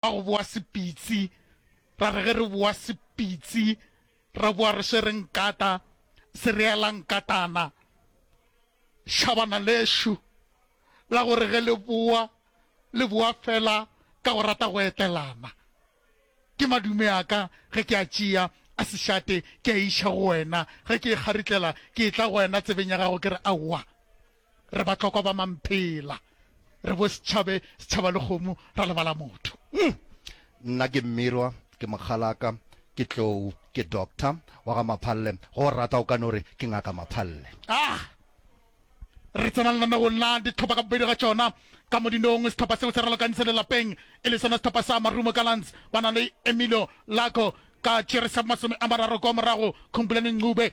Ka go boa Sepitsi, ra re ge re boa Sepitsi ra boa re swere nkata, sereelankatana, šhabana lexu la gore ge le boa le boa fela ka go rata go etelana. Ke madume a ka ge ke a tšea a sešate ke a iša go wena, ge ke e kgaritlela ke etla go wena tsebeng ya gago ke re aowa. Re batlokwa ba mamphela. Re bo setšhabe, setšhaba le kgomo, ra lebala motho. Umm! Nna ke Mmirwa, ke mokgalaka, ke tlou, ke doctor wa ga Maphalle, ge o rata o ka no re ke Ngaka Maphalle. Ah! Re tsena lenanegong la ditlhopa ka bobedi ga tšona. Ka modinong, setlhopa seo se ralokanyi se le lapeng, e le sona setlhopa sa Marumo Gallants, ba na le Emilio Lago ka tšere sa bo masome a mararo kwa morago, Khumbulani Ncube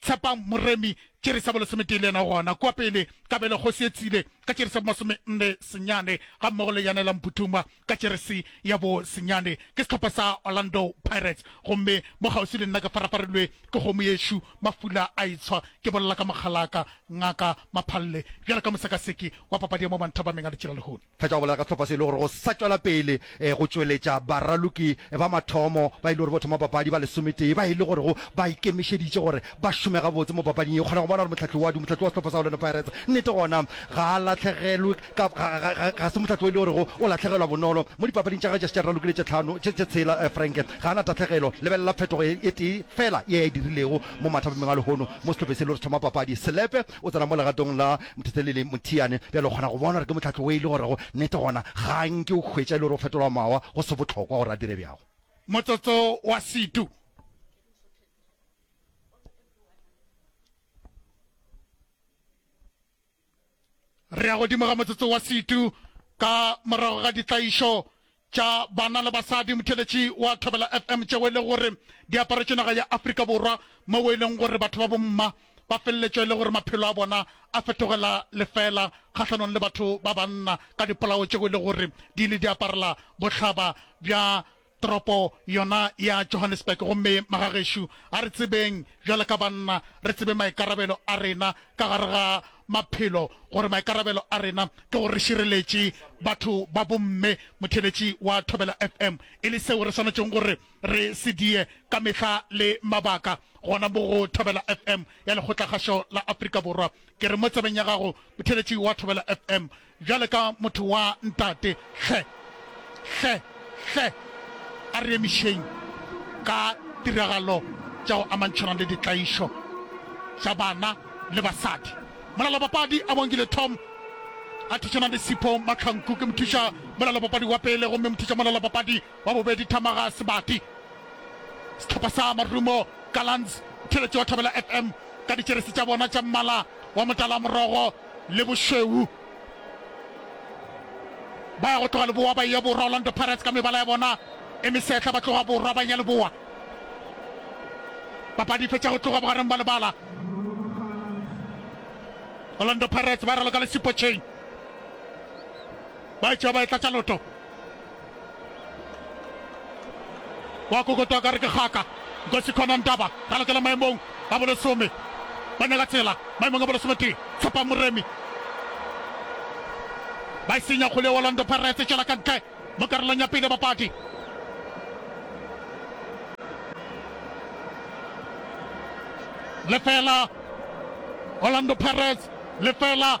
Tshepang Moremi, tšeri sa bolesometee le yena o gona kua pele, Kabelo Kgosi e tsile, ka tšeri sa bomasomenne senyane, gammogo le Yanela Mputumwa, ka tšerisi ya bo senyane. Ke sehlopha sa Orlando Pirates, gomme mo kgauswi le nna ke farafarilwe ke kgomo yešo, mafula a itshwa ke bolela ka mokgalaka, Ngaka Maphalle, bjalo ka mosekaseki wa papadi ya mo Manthabameng a Letšelalehono. Fetša go bolela ka sehlopha se e le gore go sa tšwela pele go tšweletša baraloki ba mathomo ba e le gore bo thoma papadi ba lesometee ba e le gorego ba ikemišeditše gore ba šome gabotse mo papading ye. O kgona go bona gore mohlahli wa mohlahli wa sehlopha sa Orlando Pirates nnete gona ga a lahlegelwe ka ga se mohlahli o e le gorego o lahlegelwa bonolo mo dipapading tša gagwe tša se tša raloki le tše tlhano tše tshela. Frank ga a na tahlagelo. Lebelela phetogo e tee fela ye a e dirilego mo mathapameng a lehono mo sehlopheng se e le gore se thoma papadi. Selepe. O tsena mo legatong la Mthetheli le Mothiane, bjale o kgona go bona gore ke mohlahlo wo e le gorego nnete gona ga a nke o hwetša e le gore o fetolwa mawa go se bohlokwa gore a dire bjago. Motsotso wa Setu. Re ya godimo ga motsotso wa Setu ka morago ga ditlaišo tša banna le basadi motheletši wa Thobela FM tšeo e lego gore di aparetše naga ya Afrika Borwa moo e leng gore batho ba bomma ba feleletša e le gore maphelo a bona a fetogela lefeela kgahlanong le batho ba banna ka dipolao tšeo e lego gore di ile di aparela bohlaba bja toropo yona ya Johannesburg. Gomme magagešo, a re tsebeng bjalo ka banna re tsebe maikarabelo a rena ka gare ga maphelo gore maikarabelo a rena ke gore re šireletše batho ba bomme, motheeletši wa Thobela FM, e le seo re swanetšego gore re se die ka mehla le mabaka. Gona mo go Thobela FM ya Lekgotlakgašo la Afrika Borwa. Ke re mo tsebeng ya gago, motheeletši wa Thobela FM, Bjale ka motho wa ntate, hle, hle, hle a re emišeng ka tiragalo tša go amantšhana le ditlaišo tša bana le basadi. Molalapapadi a bongile Tom a thušana le Sipho Mahlanku. Ke mothuša molalapapadi wa pele gomme mothuša molalapapadi. Wa bobedi, Thamaga Sebati, sehlopha sa Marumo Gallants, theeletšo ya Thobela FM ka ditšeresi tša bona tša mmala wa motalamorogo le bošweu. Ba ya go tloga leboa ba eya borwa, Orlando Pirates ka mebala ya bona e mesehla ba tloga borwa ba eya leboa. Papadi e fetša go tloga bogareng ba lebala. Orlando Pirates ba raloka le Sipho Chain, ba etšwa ba e tlatša loto. wa kokotoa ka re ke kgaka nkosi khona ntaba ra lokela maemong a bolesome ba nyaka tsela maemong a bolesome tee tshepa moremi ba e senya kgole orlando pirates tšwela ka ntle mo karolong ya pele bapadi lefela orlando pirates lefela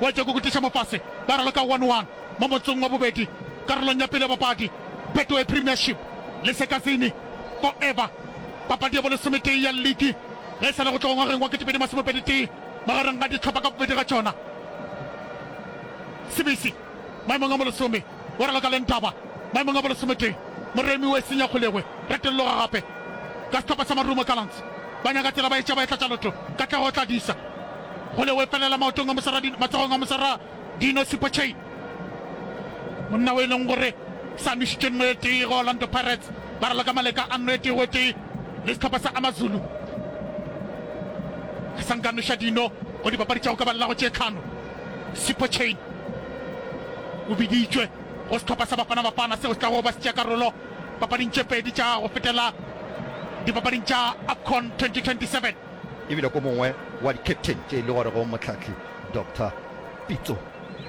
Wa tšwa go kutiša mofase ba raloka one one mo motsong wa bobedi karolong ya pele ya papadi. Betway Premiership le Sekazini Forever papadi ya bolesometee ya liki ge e sa le go tloga ngwageng wa ketepedi masomepedi tee magareng ga dihlopha ka bobedi ga tšona. Sibisi maemong a bolesome. O re lokaleng taba, maemong a bolosometee, moremi o e senya kgolegwe, retolloga gape. Ka sehlopha sa marumo Gallants, ba nyaka tsela ba etša ba e tlatša loto, Katlego o tla di sa. Kgolegwe e felela maotong a mosara Dino, matsogong a mosara Dino Super Chain. Monna o e leng gore sa nwešitše nno e tee go Orlando Pirates, ba re loka maleka a nno e tee go e tee le sehlopha sa Amazulu. A sa nka nweša Dino go dipapadi tša go ka ba lelago tše tlhano. Sipocane o biditšwe go sehlopha sa Bafana Bafana seo se tlago ba se tšea karolo papading tše pedi tša go fetela dipapading tša AFCON 2027. E bile ko mongwe wa di-captain tše e le gorego Mohlahli Doctor Pitso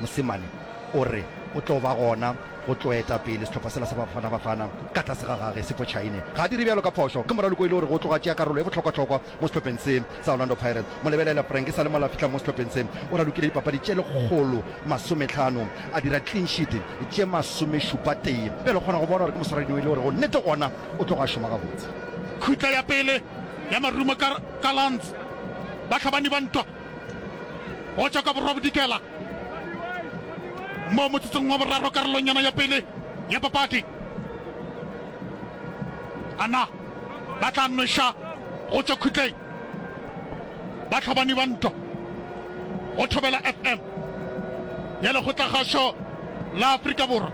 Mosimane o re o tlo ba gona go tlo eta pele sehlopha sela sa Bafana Bafana ka tlase ga gage Sipocane ga a dire bjalo ka phošo ge Moraloki o e le gore go tloga tšea karolo e bohlokwahlokwa Mo sehlopheng se sa Orlando Pirates, Molebelele Frank e sa le mola a fihla mo sehlopheng se, o ralokile dipapadi tše lekgolo masometlhano, a dira clean sheet tše masomešupatee. Bjale o kgona go bona gore ke moswaradino e le gore go nnete gona o tlogo a šoma gabotse. Khutla ya pele ya Marumo Gallants, Bahlabani ba ntwa go tšwa ka borwa bodikela mo motsotsong wa boraro karolong yona ya pele ya papadi. Ana. ba tla nweša go tšwa khutleng ba tlhobani ba ntwa go Thobela FM ya Lekgotlakgašo la Afrika Borwa.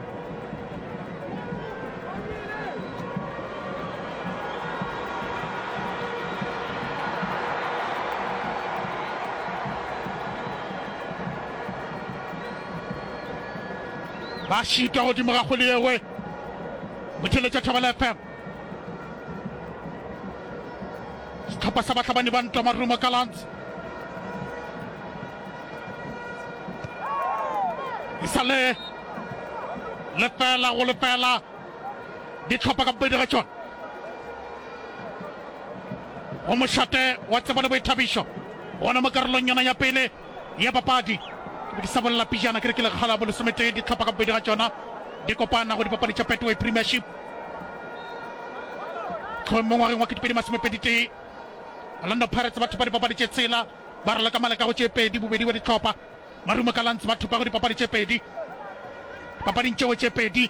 ba šitwa godimo ga kgole yewe motheletša Thobela FM Sehlopha sa bahlabani ba ntwa Marumo Gallants e sa le lefela go lefela ditlhopha ka bobedi ga tšona go mošate wa tsebo le boithabišo gona mo karolong yona ya pele ya papadi. Ke be ke sa bolela pejana ke re ke lekgala bo lesometee dihlopha ka bobedi ga tšona di kopana go dipapadi tša Betway Premiership tlhoe mo ngwageng wa ketepedi masomepeditee Orlando Pirates ba thupa dipapadi tše tshela ba raloka maleka go tše pedi bobedi bja dihlopha Marumo Gallants ba thupa go dipapadi tše pedi papading tšeo tše pedi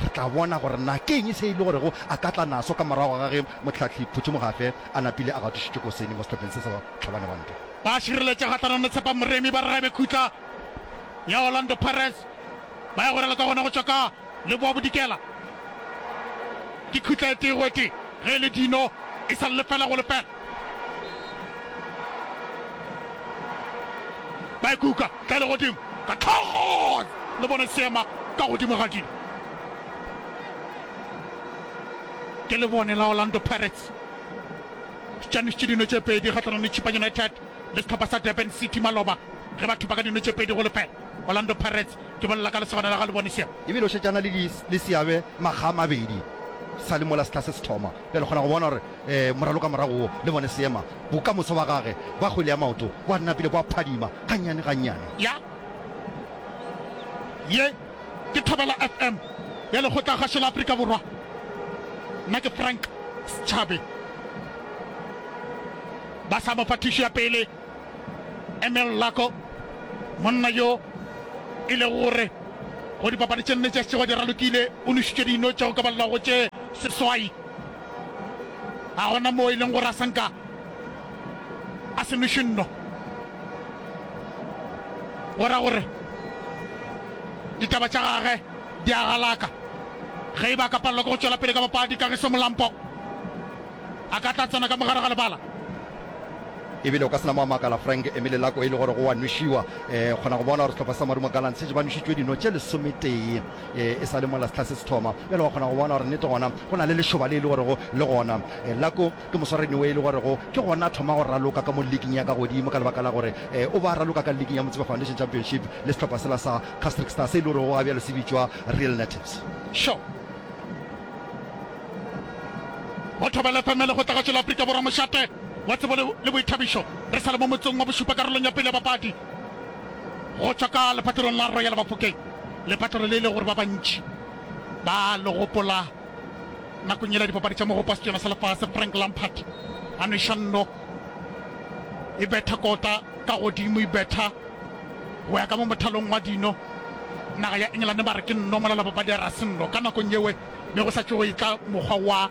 Re tla bona gore na ke eng se e le gorego a ka tla naso ka morago ga ge Mohlahli Phuthumogafe a napile a gatišitšwe koseni mo sehlopheng se sa Bahlabane ba Ntwa. Ba šireletše kgahlanong le Tshepa Moremi ba re ga e be khutla ya Orlando Pirates ba ya go rela ka gona go tšwa ka Leboa Bodikela. Ke khutla e tee go e tee ge e le Dino e sa le lefela go lefela. ba e kuka ka legodimo ka tlhogo le bone seema ka godimo ga dilo ke le bone la orlando pirates tšanišitše dino tše pedi kgatlhanong le chipa united le setlhopha sa durban city maloba ge ba thupa ka dino tše pedi go lefela orlando pirates ke bolela ka lesogana la ga le bone seema ebile o šetšana le seabe makga a mabedi sa le mola setlha se se thoma bjale kgona go bona gore Moraloka morago wo, le bone seema, bokamoso ba gage ba kgwele ya maoto bo napile bo a phadima gannyane gannyane. Ya. Ye ke Thobela FM ya Lekgotlagašo la Afrika Borwa. Nna ke Frank Schabe. Ba sa mo fa thušo ya pele, Emil Lako, monna yo e lego gore go dipapadi tše nne tše a šetšego a di ralokile, o nošitšwe dino tša go ka balelwago tše seswai. A gona moo e leng gore a se nka a se noše nno, go ra gore ditaba tša gage di a galaka. Ge e ba a ka palelwa ke go tšwela pele ka papadi, Kagiso Molampo a ka tla tsena ka mo gare ga lebala. Ebile o ka se na mo a makala Frank Emile Lako e le gore go a nošiwa. Kgona go bona gore sehlopha sa Marumo Gallants šetše ba nošitšwe dino tše lesometee. e e sa le mola setlha se se thoma. Bjale wa kgona go bona gore nnete gona go na le lešoba le e le gorego le gona e la ko ke moswarani we e le gorego ke gona a thoma go raloka ka mo liking ya ka godimo ka lebaka la gore e o ba raloka ka liking ya Motsepe Foundation Championship le sehlopha sela sa Castric Star se e le gorego ga bjalo se bitšwa Real Natives. Sho! Go thobela FM le go tla ga tšwela Afrika Borwa mošate wa tsebo le boithabišo re sa le mo motsong wa bošupa karolong ya pele ya bapadi. Go tšwa ka lepatlelong la Royal Bafokeng, lepatlelo le e le gore ba bantši ba a le gopola nakong yela ya dipapadi tša Mogopo wa Setšoyana sa Lefase, Frank Lampard a nweša nno, e betha kota ka godimo, e betha go ya ka mo mothalong wa dino. Naga ya Engelane ba re ke nno molalabapadi a re a se nno, ka nakong yewe ne go sa tšogo e ka mokgwa wa.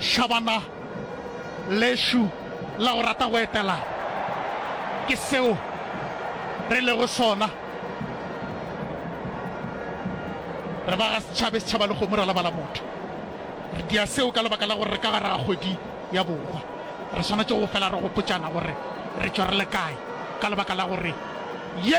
Shabana, Lešo la go rata go etela ke seo re lego sona. Re ba ga Setšhabe, Setšhaba le Kgomo ra lebala motho. Re dia seo ka lebaka la gore re ka gare ga kgwedi ya Borwa. Re swanetše go fela re gopotšana gore re tšwa re le kae ka lebaka la gore ye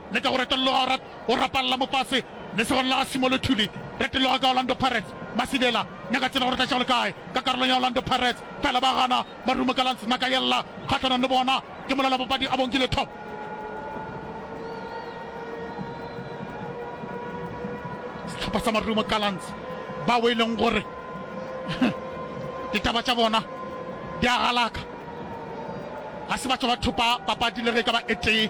le ka go retologa go go rapalla mo fase lesogong la ga Simolothuli. Retologa ka Orlando Pirates, Masibela nyaka tsela gore tlatša go le kae ka karolong ya Orlando Pirates fela ba gana Marumo Gallants naka yella kgahlanong le bona ke molela papadi Abongile Top. Sehlopha sa Marumo Gallants bao e leng gore ditaba tša bona di a galaka ga se batho ba thopa papadi le ge e ka ba e tee.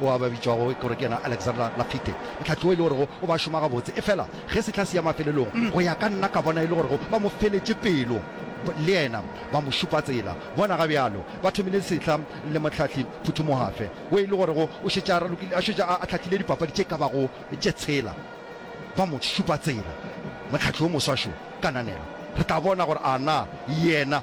Ao a ba bitšwago gore ke yena Alexander Lafitte, mohlahli wo e le gorego o ba šoma gabotse. Efela ge sehla se ya mafelelong, go ya ka nna, ka bona e le gorego ba mo feletše pelo le yena, ba mo šupa tsela. Bona ga bjalo ba thomile sehla le mohlahli phuthumuhafe wo e le gorego o šetše a ralokile, a šetše a hlahlile dipapadi tše ka bago tše tshela. Ba mo šupa tsela. Mohlahli wo moswa šo, kananelo. Re tla bona gore a na yena.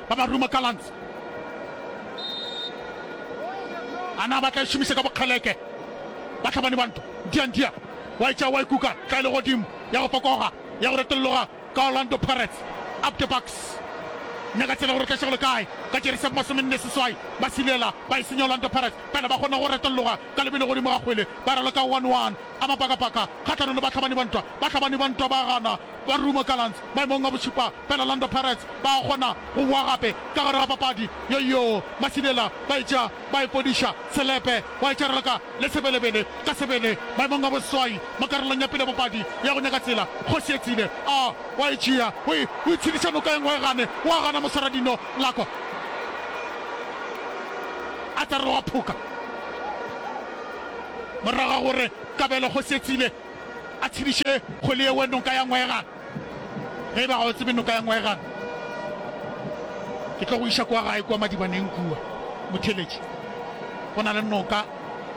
ba ba Ruma Gallants. A na ba tla e šomiša ka bokgeleke batlhabani ba ntwa? Ntiantia wa e tšea wa e kuka tla e le godimo ya go fokoga ya go retolloga ka Orlando Pirates. Up the Bucks. Nyaka tsela gore tlašego le kae ka jeresi ya bomasomenne seswai ba silela ba e senya Orlando Pirates pele ba kgona go retolloga ka lebelo godimo ga kgwele ba raloka 1-1 a mapakapaka kgatlhanong le batlhabani ba ntwa. Batlhabani ba ntwa ba gana Kwa Rumo Gallants maemong a bošupa fela, Orlando Pirates ba a kgona go boa gape ka gare ga papadi. Yoyoo, Masidela ba etša ba ipodiša, Selepe wa etša raloka le Sebelebele ka sebele maemong a boseswai mo karolong ya pele ya papadi ya go nyaka tsela. Kgosietsile a wa e tšea, o e, o e tshediša noka e nngwe e gane, o a gana Moswaradino Lako a tla re o a phoka morago ga gore Kabelo Kgosietsile A tshediše kgwele ye we noka ya ngwega, ge e ba ga o tsebe noka ya ngwega ke tlo go iša kwa gae kwa madibaneng kua motheletši go na le noka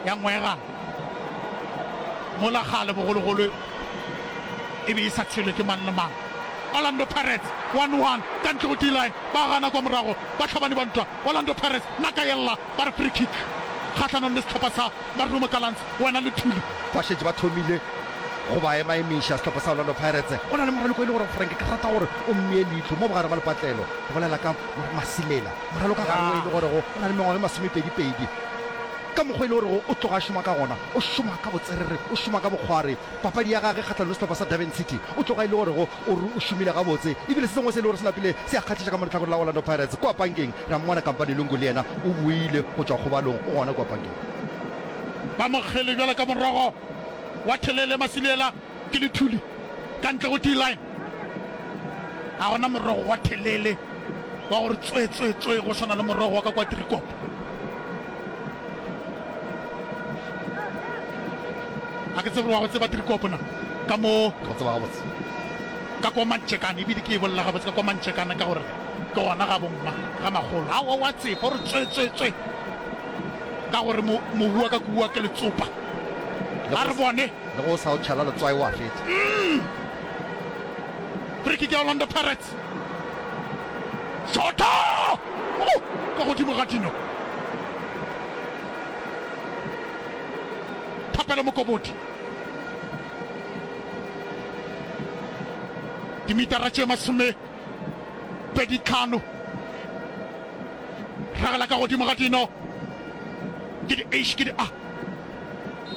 ya ngwega mola kgale bogologolo e be e sa tshelwe ke mang le mang Orlando Pirates 1-1 ka ntle go D-line ba gana kwa morago ba tlhabane ba ntwa Orlando Pirates naka yella ba re free kick kgahlanong le setlhopha sa Marumo Gallants Wena le Thuli ba šetše ba thomile go ba emaemiša. Sehlopha sa Orlando Pirates go na le moraloki o e le gore Frank ke rata gore o mmee leihlo mo bogare ba lepatlelo, go bolela ka Masimela. Moraloka gare o e le gorego o na le mengwaga e masomepedipedi. Ka mokgwa e le gorego o tloga a šoma ka gona, o šoma ka botserere, o šoma ka bokgwari. Papadi ya gage kgahlanong le sehlopha sa Durban City o tloga e le gorego o re o šomile gabotse ebile se sengwe se e le gore se napile se a kgahliša ka mo lehlakoreng la Orlando Pirates. Kua pankeng re a mmona Kampane Lungu le yena o boile go tšwa kgobalong, o gona kua pankeng. Ba mokgele bjalo ka morogo wa thelele, Masiliela ke lethuli ka ntle go D-line. Ga gona morogo wa thelele wa gore tswetswetswe go swana le morogo wa ka kwa Driekop. Ga ke tsebe wa go tseba Driekop na ka mo Ke go tseba gabotse. ka kwa mantšekane ebile ke e bolela gabotse ka kwa mantšekane ka gore ke gona ga bomma ga magolo a wa tseba gore tswetswetswe ka gore mobu wa ka ke bua ke letsopa a re bone le go sa o tšhela letswai wa fetsa mm. frikik ya orlando pirates shota oh, ka godimo ga dino thapelo mokobodi dimitara tše masome Pedi tlhano. Ragela ka godimo ga dino. Ke di eish ke di a.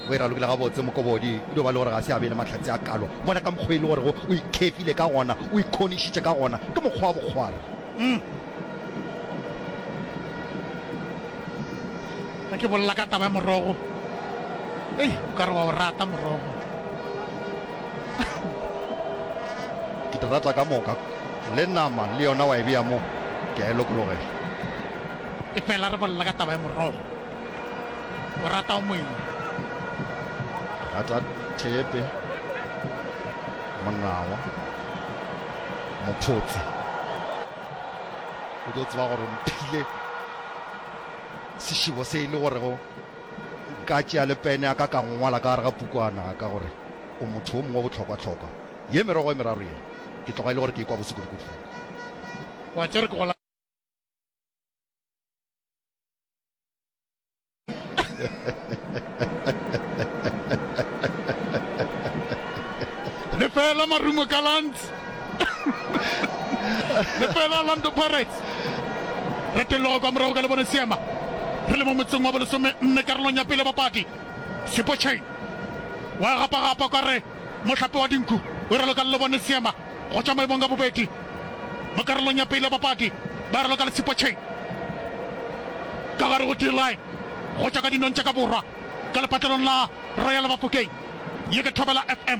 O e ralokile gabotse Mokobodi. E dio ba le gore ga se a be le mahlatse a kalo. Bona ka mokgwa e le gorego o ikhefile ka gona, o ikhonišitše ka gona. Ke mokgwa wa bokgwara. Umm. Ge ke bolela ka taba ya morogo. Ei, o ka re wa o rata morogo. ke di rata ka moka le nama le yona wa e bea mo ke a e lokologela e fela re bolela ka taba ya morogo o rata o moeng rata thepe monawa mophotsi o tlo tseba gore mphile sešebo se e le gorego Nka tšea le pene ya ka ka ngwala ka gare ga pukwana ya ka gore o motho wo mongwe wa bohlokwahlokwa. Ye merogo e meraro ye, ke tloga e le gore ke e kwa bose kudukudu fela. Wa tšea gore ke gola. Lefela marumo ka lantsi. lefela orlando pirates re telogo kwa morago ka lebone seema re le mo motseng wa bolesome nne karolong ya pele bapadi sepochain wa gapagapa kwa re mohlape wa dinku o ralo ka lebone seema go tšwa maemong ka bobedi mo karolong ya pele bapadi ba ralo ka le sepochain ka gare go d-line go tšwa ka dinong tša ka borwa ka lepatlelong la royal bafokeng ye ke thobela fm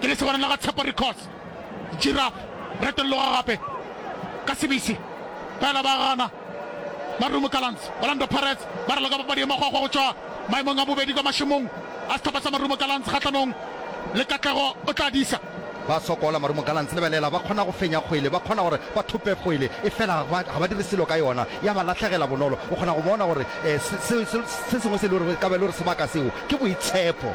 Ke lesogana la ga Tshepo Records, Giraffe, retologa gape ka sebisi fela ba gana. Marumo Gallants, Orlando Pirates ba raloka papadi e makgwakgwa go tšwa maemong a bobedi kwa mašemong a sehlopha sa Marumo Gallants kgahlanong le Katlego o tla disa. Ba sokola Marumo Gallants, lebelela ba kgona go fenya kgwele, ba kgona gore ba thope kgwele efela ga ba dire selo ka yona, ya ba latlhegela bonolo. O kgona go bona gore se sengwe se e le gore e ka ba e le gore sebaka seo ke boitshepo.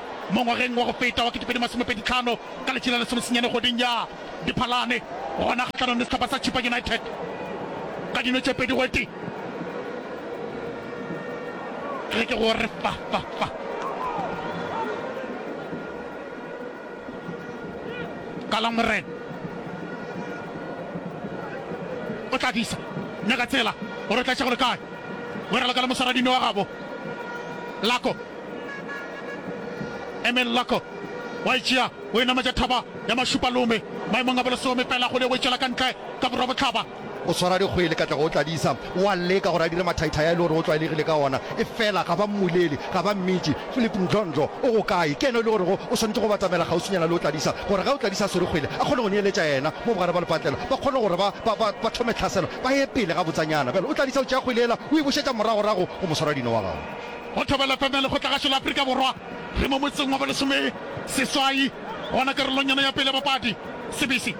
Mo ngwageng wa go feta wa 2025, ka letše la lesomesenyane kgweding ya Diphalane, gona kgahlanong le sehlopha sa Chippa United ka dino tše pedi go tee, ge ke go re fa, fa, fa, Kala Morena o tla disa nyaka tsela gore o tla tša go le kae, Weralo ka le mosaradino wa gabo Lako. Emil Lako wa e tšea, o e nametša thaba ya Mašupalome maemong a bolesome fela go le o e tšwela ka ntle ka borwa bohlaba. O swara dikgwele ka tle go Tladisa, o a leka gore a dire mathaithai a e le gore o tlwaelegile ka ona, efela ga ba mmulele, ga ba mmitše. Philip Ndlondlo o go kae? Ke yena e le gorego o swanetše go batamela kgauswinyana le o Tladisa gore ge o Tladisa a swere kgwele a kgone go neeletša yena mo bogare ba lepatlelo, ba kgone gore ba, ba, ba, ba thome tlhaselo, ba ye pele gabotsanyana. Bjale o Tladisa o tšea kgwele yela o e bušetša moragorago go moswaradino wa gagwe. Go Thobela FM ya Lekgotlagašo la Afrika Borwa, re mo motseng wa bolesome seswai gona karolong yona ya pele ya bapadi. Sebisi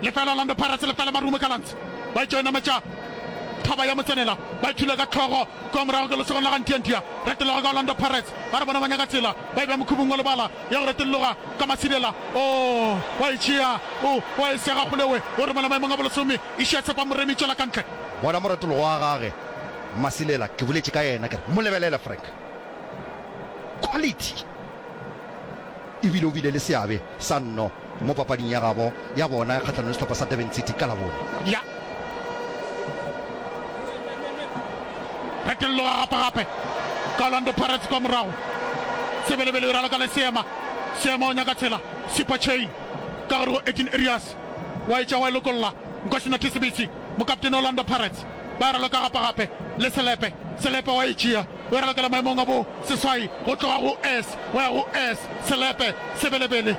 lefela Orlando Pirates lefela Marumo Gallants ba etšo enametša thaba ya motsenela ba ithula ka hlogo kua morago ke lesogong la ga Ntiantia retologa ka Orlando Pirates ba re bona ba nyaka tsela ba e bea mokhubung wa lebala ya go retologa ka Masidela o wa e tšea o wa e sega kgolewe o romela maemong a bolesome Išia Tshepa Moremi tšwela kantle bona moretologo wa gage. Masilela, ke boletše ka yena ke re, mo lebelele Frank. Quality! E bile o bile le seabe sa nno mo papading ya gabo ya bona kgahlanong le sehlopha sa Durban City ka Labone. Ya. Phetologa gape gape ka Orlando Pirates kwa morago. Sebelebele e ralokela Seema. Seema o nyaka tsela. Super chain ka gare go Edin Erias. Wa e tšea wa e lokolla. Nkosi Nathi Sebitsi, mokaptene wa Orlando Pirates. ba raloka gapagape le selepe. Selepe wa e tšea, o e ralokela maemong a bo seswai, go tloga go S go ya go S. Selepe se belebele,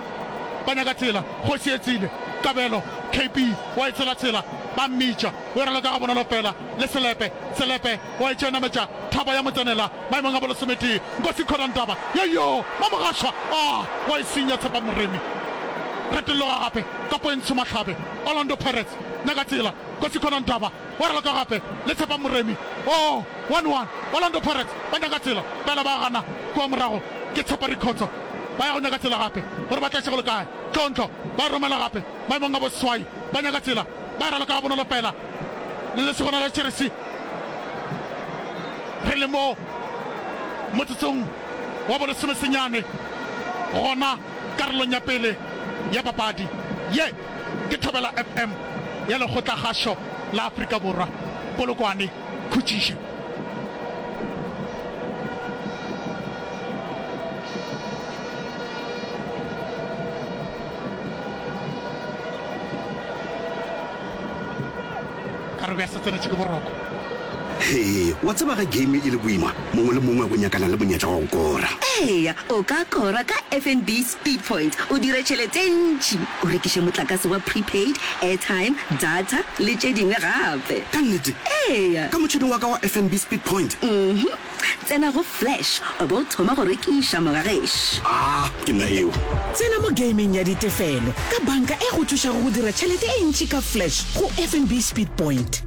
ba nyaka tsela, kgoši e tsile, kabelo, KB wa e tshela tsela, ba mmitša, o e raloka gabonolo fela le selepe. Selepe wa e tšea, nametša thaba ya motsenela, maemong a bo lesometee. Nkosi Khodantaba, yoyoo, Mamogašwa, aa, wa e senya, Tshepa Moremi. Retologa gape, Kapoentsho Mahlabe, Orlando Pirates, nyaka tsela. Kgosi Conan Daba wa raloka gape le Tshepa Moremi. Oo, one one, Orlando Pirates ba nyaka tsela fela ba gana. Kua morago ke Tshepa Rikhotso ba ya go nyaka tsela gape gore ba tleše go le kae. Tlontlo ba e romela gape maemong a boswai ba nyaka tsela ba e raloka gabonolo fela le lesogana la jeresi. Re le mo motsotsong wa bolesomesenyane gona karolong ya pele ya papadi ye. Ke Thobela FM ya Lekgotlakgašo la Afrika Borwa, Polokwane, khutšiši. Ka re be a se tsenetše ke boroko. Hee, wa tseba ge game e le boima, mongwe le mongwe o nyakana le monyetla wa go kora. Eya, o ka kora ka FNB. Speedpoint o dire tšhelete e ntši, o rekiše motlakase wa prepaid, airtime, data le tše dingwe gape. Ka nnete? Eya. Ka motšhene wa ka wa FNB Speedpoint? Uhum. Tsena go Flash o bo o thoma go rekiša moga gešo. Aa, ke nna yeo. Tsena mo gameng ya ditefelo ka banka e go thušago go dira tšhelete e ntši ka Flash go FNB Speedpoint.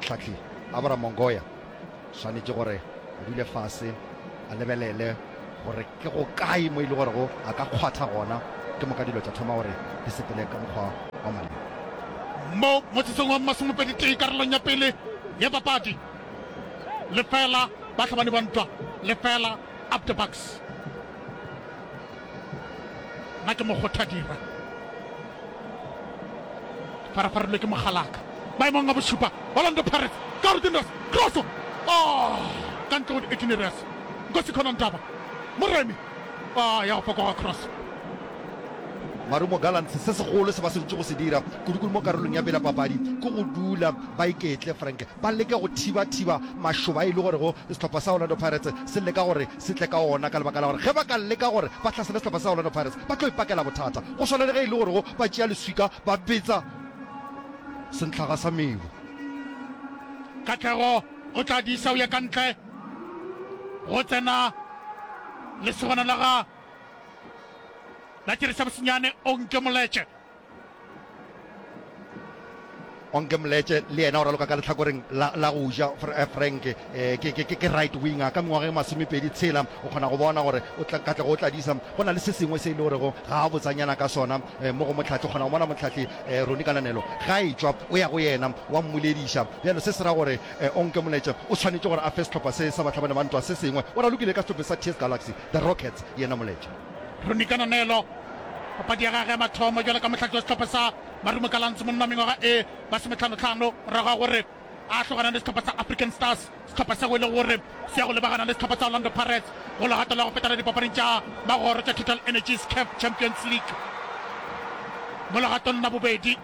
Tlhahli Abra Mongoya swanetše gore a dule fase a lebelele gore ke go kae mo e le gore go a ka kgwatha gona ke moka dilo tša thoma gore di sepele ka mokgwa wa maleba. Mo motsotso wa masomepedi tee karolong ya pele ya papadi, lefela Bahlabani ba Ntwa, lefela Up The Bucks. Nna ke mokgothadira, farafarilwe ke mogalaka maemong a bošupa. Orlando Pirates, Karu Dindas, kroso oh, ka ntle go di-18 Nkosi Khona Ndaba, Moremi oh, ya go fokoga kroso. Marumo Gallants se segolo se ba swanetše go se dira kudukudu mo karolong ya pele ya papadi ke go dula ba iketle, Frank, ba leke go thiba-thiba mašoba a e le gorego sehlopha sa Orlando Pirates se leka gore se tle ka wona ka lebaka la gore ge ba ka leka gore ba hlasele sehlopha sa Orlando Pirates ba tlo ipakela bothata go swana le ge e le gorego ba tšea leswika ba betsa sentlhaga sa mebu. Katlego o tla disa o ye ka ntle go tsena lesogana la ga Latirisa Bosinyane Onke Moletše. Onke Mletshe le yena o raloka ka lehlakoreng la, la go ja. Eh, Frank eh, ke, ke, ke right winger ka mengwaga e masomepedi tshela. O kgona go bona gore o tla, ka tlego o tladisa. Go na le se sengwe se e le gorego ga a botsanyana ka sona eh, mo go motlhahli. O kgona go bona motlhahli eh, Roni Kananelo ga a etšwa o ya go yena wa mmolediša. Bjalo se se ra gore eh, Onke Mletshe o tshwanetše gore a fe sehlopha se sa Bahlabane ba ntwa se sengwe. O ralokile ka sehlophe sa TS Galaxy, the Rockets, yena Mletshe. Ronnie Kananelo papadi ya gage ya mathomo jwale ka mohlathi wa sehlopha sa Marumo Gallants monna wa mengwaga e masometlhano-tlhano morago ga gore a tlogana le sehlopha sa African Stars sehlopha sego e le gore se ya go lebagana le sehlopha sa Orlando Pirates go legato la go fetela dipapading tša magoro tša Total Energies CAF Champions League mo legatong la bobedi.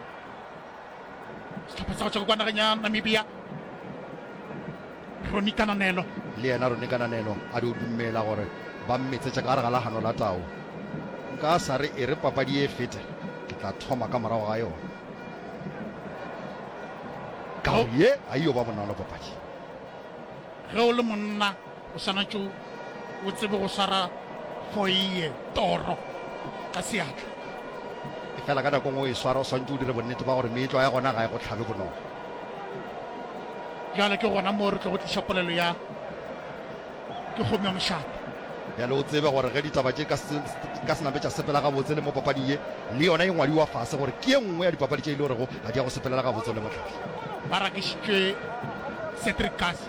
sehlopha sa go tšwa kwa nageng ya namibia roni kananelo le yena roni kananelo a di o dumela gore ba mmetsetša ka gare ga la tau nka sa re e re papadi e fete ke tla thoma ka morago ga yona ka ye a yo ba bonolo papadi ge o le monna O swanetše o tsebe go swara foeye, toro, ka seatla. Efela ka nako nngwe o e swara, o swanetše o dire bonnete ba gore meetlwa ya gona ga e go hlabe bonolo. Bjale ke gona moo re tlogo tliša polelo ya Ke kgomo ya mošate. Bjale o tsebe gore ge ditaba tše ka, ka senape tša sepela gabotse le mo papading ye, le yona e ngwadiwa fase gore ke ye nngwe ya dipapadi tše e le gorego ga di ya go sepelela gabotse le mohlahli. Ba rakišitšwe Cedric Kass.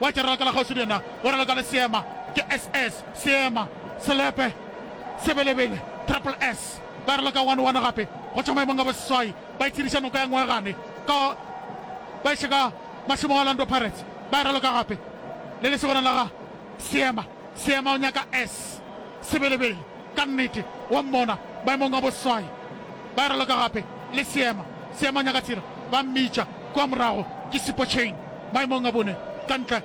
Wa tšerela ka la kgauswi le yena, o raloka le seema, ke SS, seema, selepe, sebelebele, triple S. Ba raloka one one gape go tšwa maemong a boseswai, ba itshediša noka ya Ngwegane ka ba iša ka mašemong a Orlando Pirates, ba e raloka gape le lesogana la ga seema. Seema o nyaka S. Sebelebele, ka nnete, wa mmona, maemong a boswai. Ba raloka gape le Seema. Seema o nyaka Tshira, ba mmitša kua morago ke Sipotšheng, maemong a bone, ka ntle,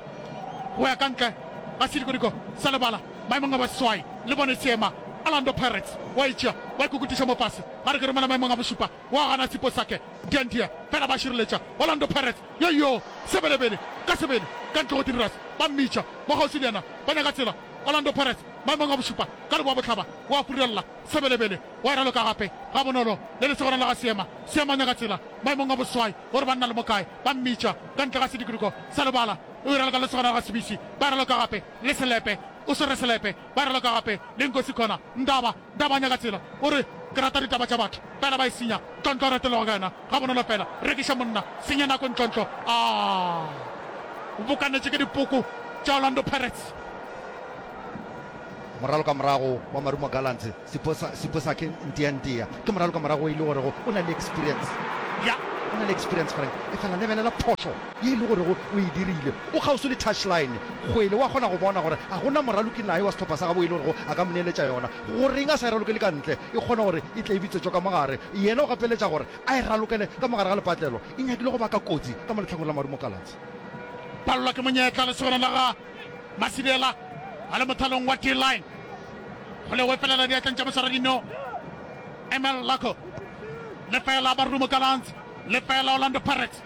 go ya ka ntle ga sedikodiko sa lebala, maemong a boswai. Le bone Seema, Orlando Pirates, wa itšea, ba ikukutiša mo fase. Ga re ke romela maemong a bošupa, o a gana tshiko sake Diandia fela ba šireletša Orlando Pirates yoyo sebelebele ka sebele ka ntle go Tiniras ba mmitša mo kgauswi le yena ba nyaka tsela Orlando Pirates maemong a bošupa ka leboa bohlaba o a furelela sebelebele o a raloka gape ga bonolo le lesogana la ga Seema Seema o nyaka tsela maemong a boswai o re ba nna le mokae ba mmitša ka ntle ga sedikiduko sa lebala o e raloka le lesogana la ga Sebisi ba raloka gape le Selepe o swere Selepe ba raloka gape le Nkosi Kona Ndaba Taba a nyaka tsela o re ke rata ditaba tša batho fela ba e senya tlontlo a ratelwa go yena ga bonolo fela rekiša monna senya nako ntlontlo a bokanetše ke dipoko tša Orlando Pirates. Moralo ka morago wa Marumo Gallants Siposa Siposa ke ntia ntia ke moralo ka morago e le gorego o na le experience ya o na le experience Frank efela lebelela phošo ye e le gorego o e dirile. O kgauswi le touchline, kgwele wa kgona go bona gore ga go na moraloki naye wa sehlopha sa gabo e le gorego a ka mo neeletša yona. Goreng a sa e ralokele ka ntle, e kgone gore e tle e bitswetšwa ka mo gare? Yena o gapeletša gore a e ralokele ka mo gare ga lepatlelo. E nyakile go baka kotsi ka mo lehlakong la marumo Gallants. Palelwa ke monyetla, lesogana la ga Masidela a le mothalong wa D-line. Kgwele e felela diatleng tša moswaradino Emel Lako. Lefeela Marumo Gallants, lefeela Orlando Pirates.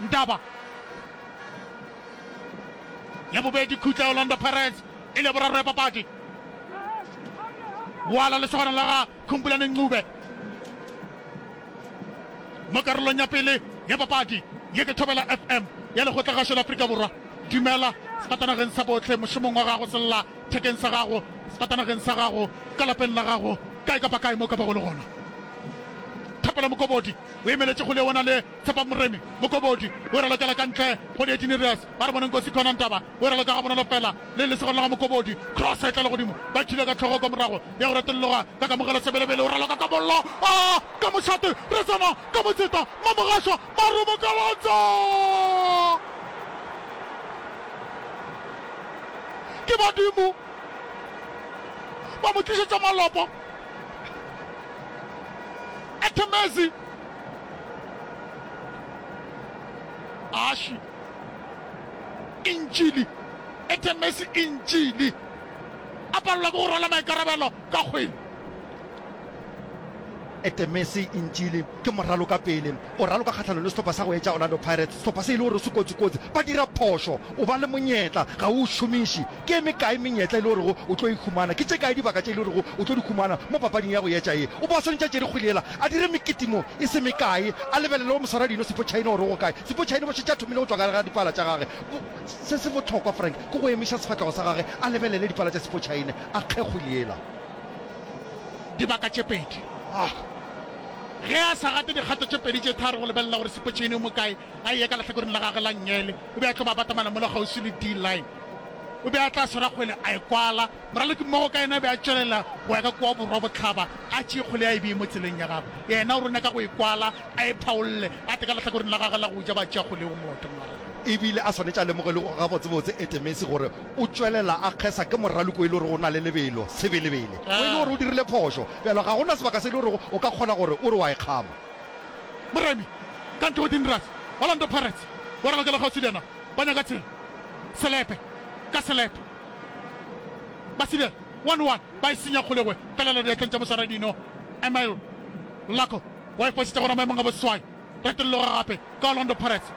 Ndaba. Ya bobedi khutla ya Orlando Pirates e le ya boraro ya papadi. Boala lesogana la ga Khumbulani Ncube mo karolong ya pele ya papadi. Ye ke Thobela FM ya lekgotlagašo la Afrika Borwa. Dumela sefatanageng sa botlhe, mošomong wa gago, sella thekeng sa gago, sefatanageng sa gago, ka lapeng la gago, kae kapa kae mo o ka bago le gona. Thapelo Mokobodi o emeletše kgole ona le. Tshepa Moremi Mokobodi o e ralokela ka ntle go Dietinireas ba re boneng Kosi Khona Ntaba o e raloka ga bonolo fela le lesego la ga Mokobodi Cross e tla legodimo ba thile ka tlhogo kwa morago ya go retologa ka kamogelo Sebelebele o raloka ka bollo a ka mošate re tsena ka motseta Mamogasha ba robokalantsa ke badimo ba mo tlišetša malopo Ethemezi Aši, Intšili e themesi Intšili a palelwa ke go rwala maikarabelo ka kgwele. E themesi Intšili ke moralo ka pele o raloka kgahlanong le sehlopha sa go etša Orlando Pirates. Sehlopha se e le gore se kotsi-kotsi, ba dira phošo, o ba le monyetla ga o o šomiši. Ke e mekae menyetla e le gorego o tlo e humana? Ke tše kae dibaka tše e le gorego o tlo di humana mo papading ya go etša ye? O be a swanetše a tšere kgwele yela a dire mekete mo e se mekae, a lebelele go moswaradino Siphochaine gore o go kae. Siphochaine bo šetše a thomile go tšwa gare ga dipala tša gage. Bo, se se bohlokwa, Frank, ke go emiša sefahlego sa gage a lebelele dipala tša Siphochaine, a kge kgwele yela. Dibaka tše pedi. Ah, ge a sa gate dikgato tše pedi tše tharo go lebelela gore Siphochaine o mo kae, a eye ka lehlakoreng la gagwe la nngele, o be a tlo babatamana mola kgauswi le D-line. O be a tla swara kgwele a e kwala, moraloki mmogo ka yena a be a tšwelela go ya ka kua borwa bohlaba, a tšee kgwele a e bee mo tseleng ya gagwe. Yena o rone ka go e kwala, a e phaolle, a tle ka lehlakoreng la gagwe la go ja, ba tšea kgwele yeo motho. Mara. E bile a swanetše a lemoge e le gabotsebotse Etemesi gore o tšwelela a kgesa ke moraloki wo e le gorego o na le lebelo, sebelebele, wo e le gore o dirile phošo. Bjalo ga go na sebaka se e le gorego o ka kgona gore o re wa e kgama. Moremi, ka ntle go Dinras, Orlando Pirates, wa ralokelega o se bjana. Ba nyaka tsela, selepe ka selepe. Ba sibela one one, ba e senya kgole kwe, felela diatleng tša moswara dino. Emile Lako wa e fošetša gona maemong a boswai. Retologa gape ka Orlando Pirates,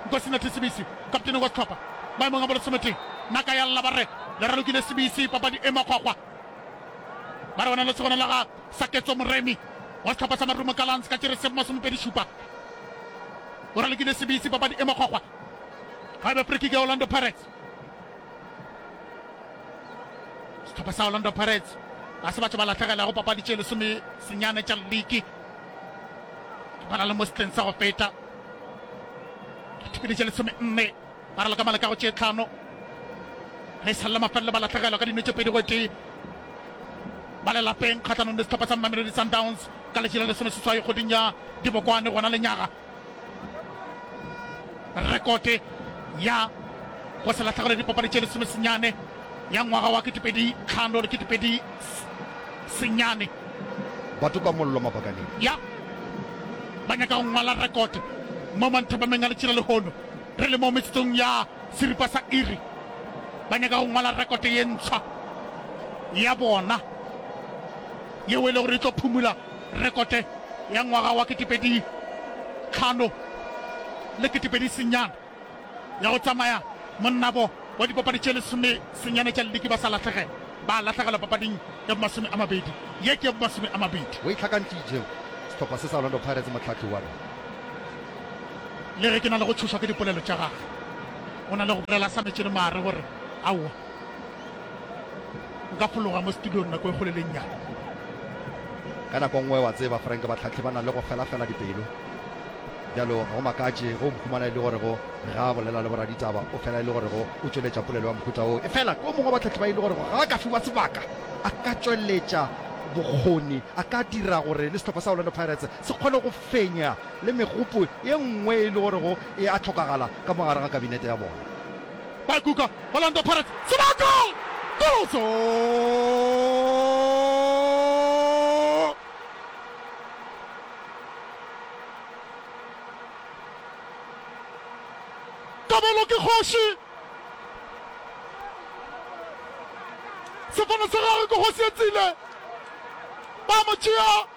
Nkosinathi Sibisi, kaptene wa sehlopha, maemong a bolesometee. Naka ya lla ba re le ralokile Sibisi, papadi e makgwakgwa. Ba re go na le segona la ga Saketso Moremi wa sehlopha sa Marumo Gallants ka Tšeresefo masomepedi šupa. O ralokile sebisi, papadi e makgwakgwa. Ga e be free kick ya Orlando Pirates. Sehlopha sa Orlando Pirates ga se batho ba latlhegelago papadi tše lesome senyane tša league. Ke bana le mo setleng sa go feta dipele tše lesome nne. Ba raloka maleka go tše tlhano ge e sa le la mafelelo ba lahlegelwa ka dino tše pedi go tee ba le lapeng kgahlanong le sehlopha sa Mamelodi Sundowns ka letši la lesomeseswai kgweding ya Dibokwane gona lenyaga. Rekote ya go se lahlegelwe dipapadi tše lesomesenyane ya ngwaga wa ketepedi tlhano le ketepedi senyane. Batho ka mollo mapakaneng. Ya ba nyaka go ngwala rekote mo manthabameng a letši la lehono. Re le mo metsotsong ya seripa sa iri, ba nyaka go ngwala rekote ye ntshwa ya bona, yeo e le gore e tlo phumula rekote ya ngwaga wa ketepedi tlhano le ketepedi senyana ya go tsamaya monnabo wa dipapadi tše lesome senyana tša liki. Ba sa lahlegela, ba lahlegela papading ya bomasome a mabedi, ye ke ya bomasome a mabedi. O e hlakantšitše sehlopha se sa Orlando Pirates mohlahli wa rena. Le ge ke na le go tšhošwa ke dipolelo tša gagwe, o na le go bolela a sa metše le maare gore, Aowa, nka fologa mo studiong nako e kgolo le e nnyane. Ka nako nngwe, wa tseba, Frank, bahlahli ba na le go felafela dipelo. Bjalo, ga go makatše ge o mphumana e le gorego ge a bolela le boraditaba, o fela e le gorego o tšweletša polelo ya mohuta woo. Efela yo mongwe wa bahlahli ba e le gorego ge a ka fiwa sebaka, a ka tšweletša bokgoni, a ka dira gore le sehlopha sa Orlando Pirates se kgone go fenya le megopo ye nngwe e le gorego e a hlokagala ka mo gare ga kabinete ya bona. Ba kuka Orlando Pirates sebaka! Goloso! Kabelo ke kgoši! Sefane sa gagwe ke kgosi e tsile! Ba mo tšea!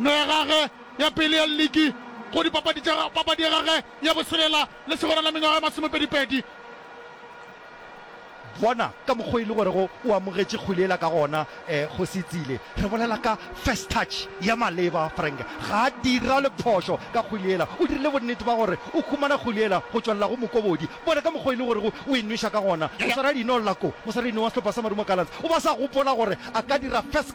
no ya gagwe ya pele ya ligi go dipapadi tša papadi ya gagwe ya boselela le segona la mengwaga ya masomepedipedi. Bona ka mokgwa e le gorego o amogetše kgwele ela ka gona, eh, Kgosi Itsile. Re bolela ka first touch ya maleba, Frank ga a dira le phošo ka kgwele ela. O dirile bonnete ba gore o humana kgwele ela go tšwelela go mokobodi. Bona ka mokgwa e le gorego o e nweša ka gona. Moswaradi no Lako, moswaradi no wa sehlopha sa Marumo Gallants, o ba sa gopola gore a ka dira first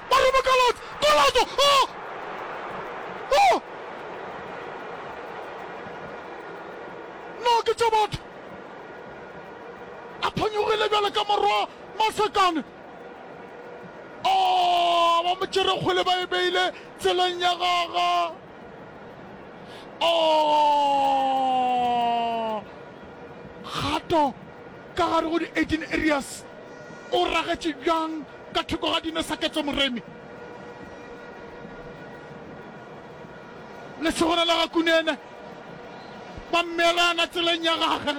Marumo Gallants, Golazo! Oh! Oh! No ke tša batho. A phanyogile bjale ka morwa Masakane. Oh, ba mo tšere kgole ba e beile tseleng ya gaga. Oh! Kgato Ka gare go di-Aden Areas o ragetše bjang ka thoko ga dino sa Ketso Moremi? Lesogana la ga Kunene ba mmeelana tseleng ya gage.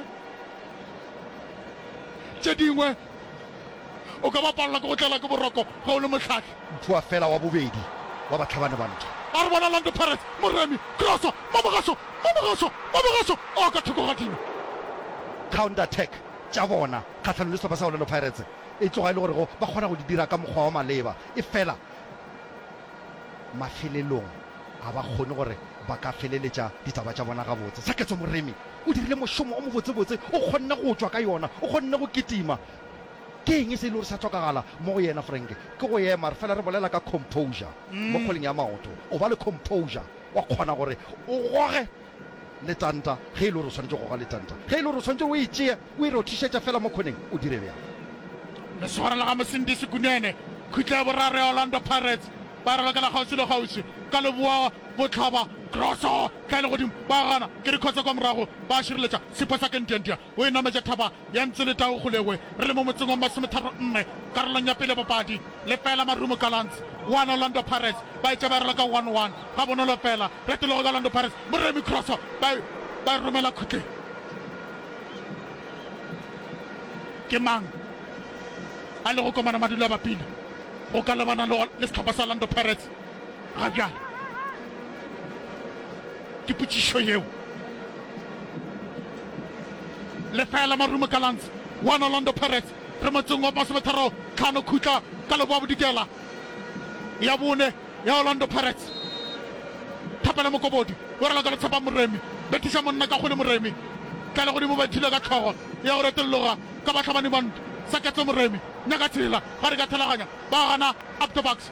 Tše dingwe o ka ba palelwa ke go tlelwa ke boroko ge o le mohlahli. Mphoa fela wa bobedi wa batlhabani ba ntwa. A re bona Orlando Pirates, Moremi, kroso, Mabogaso, Mabogaso, Mabogaso o ka thoko ga dino. Counter attack tša bona kgahlanong le sehlopha sa Orlando Pirates e tloga e le gore go ba kgona go di dira ka mokgwa wa maleba efela mafelelong ga ba kgone gore ba ka feleletša ditaba tša bona gabotse. Saketswa Moremi o dirile mošomo o mobotsebotse, o kgonne go tšwa ka yona, o kgonne go kitima. Ke eng se e lego sa hlokagala mo go yena, Frank? Ke go ema, re fela re bolela ka composure mo kgoleng ya maoto. O ba le composure, wa kgona gore o goge letanta ge e le gore o swanetše go goga letanta. Ge e le gore o swanetše o e tšee o e rothišetša fela mo khoneng, o dire bjalo. Lesogana la ga Mosindisi Kunene, khutla ya boraro ya Orlando Pirates, ba ralokela kgauswi le kgauswi ka leboa bohlaba. Grosso ka legodimo, ba gana, ke dikgotsa kwa morago, ba šireletša sepho sa Kendiandia. O e nametše thaba ya Ntsu le Tau Kgolegwe. Re le mo motseng wa Masometharo Nne, karolong ya pele ya bapadi. Lefeela Marumo Gallants, one Orlando Pirates. Ba e tšeberela ka one one. Gabonolo feela, retologo ya Orlando Pirates, Moremi Kroso, ba e, ba e romela khutleng. Ke mang a lego komana madula a bapile go ka lebana le, le sehlopha sa Orlando Pirates ga bjale? Ke potšišo yeo lefeela Marumo Gallants 1 Orlando Pirates re motseng wa masometharo tlhano khutla ka leboa bodikela ya bone ya Orlando Pirates Thapelo Mokobodi o raloka le Tshepang Moremi bethiša monna ka kgole Moremi tlale godimo ba ithula ka tlhogo ya go retologa ka batlhabani mont sa ketlo Moremi nyaka tshela ba re ka thelaganya ba gana up the bucks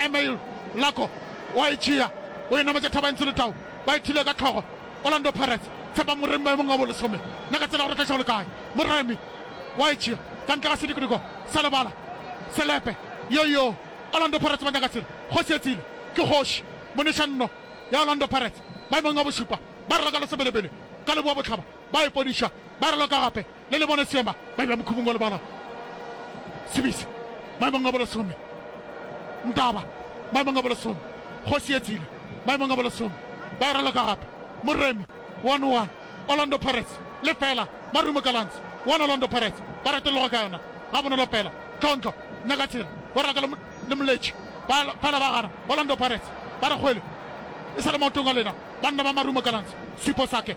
Emile Lako o a e tšea, o e nametša Thabantsho le Tau ba e thile ka tlhogo. Orlando Pirates, Tshepang Moremi maemong a bolesome, na ka tsela ya go retlaiša go le kae? Moremi o a e tšea ka ntle ga sedikodiko sa lebala, selepe, yoyo! Orlando Pirates ba nyaka selo, kgoši e tsile, ke kgoši! Monešanno ya Orlando Pirates maemong a bošupa ba raloka le Sebelebele ka Leboabohlaba, ba e podiša, ba raloka gape. le le bona seema ba eba mokhubung wa lebala sebisa maemong a bolesome ntaba maemong a bolesome kgosi e tsile maemong a bolesome ba e raloka gape moremi one one orlando pirates le fela marumo kalans one orlando pirates ba reteloga ka yona ga bonolo fela tlhontlo nyaka tsela ba raka le moletši fela ba gana orlando pirates ba re kgwele e sa le maotong a lena banna ba marumo kalans sipo sake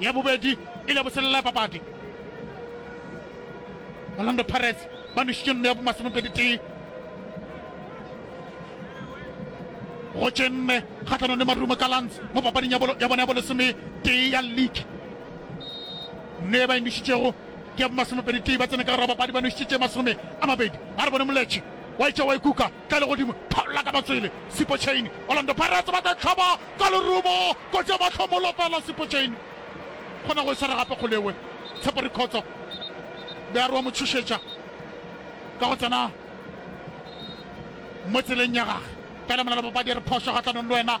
Ya bobedi e le boselela ya papadi. Orlando Pirates ba nwešitše nno ya bomasomepedi tee go tše nne kgatlhanong le Marumo Gallants mo papading ya bolo- ya bona ya bolesome tee ya league. Nno e ba e nwešitšego ke ya bomasomepedi tee ba tsene ka gare ga papadi ba nwešitše tše masome a mabedi. A re bone Moletše wa etša wa e kuka Ka legodimo, phallola ka matswele Sipotjhaini. Orlando Pirates ba tla hlaba ka lerumo, kotsi ya mahlomolo fela Sipotjhaini. Kgona go e swara gape Kgoleoe. Tshepo Rikhotso, Bearu a mo tšhošetša ka go tsena mo tseleng ya gage. Pele Molelwa Papadi e re phošo kgahlanong le wena.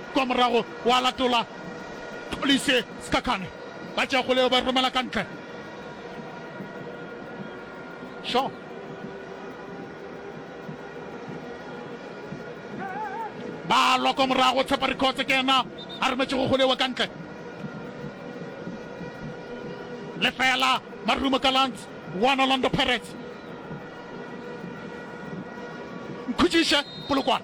Kwa morago gwa latola Xolise Sikhakhane, ba tšea kgole yeo ba e romela ka ntle. Shaw. Ba lwa kwa morago, Tshepa Rikhotse ke yena a rometšego kgole yeo ka ntle. Lefela Marumo Gallants, one Orlando Pirates. Nkhutšiše Polokwane.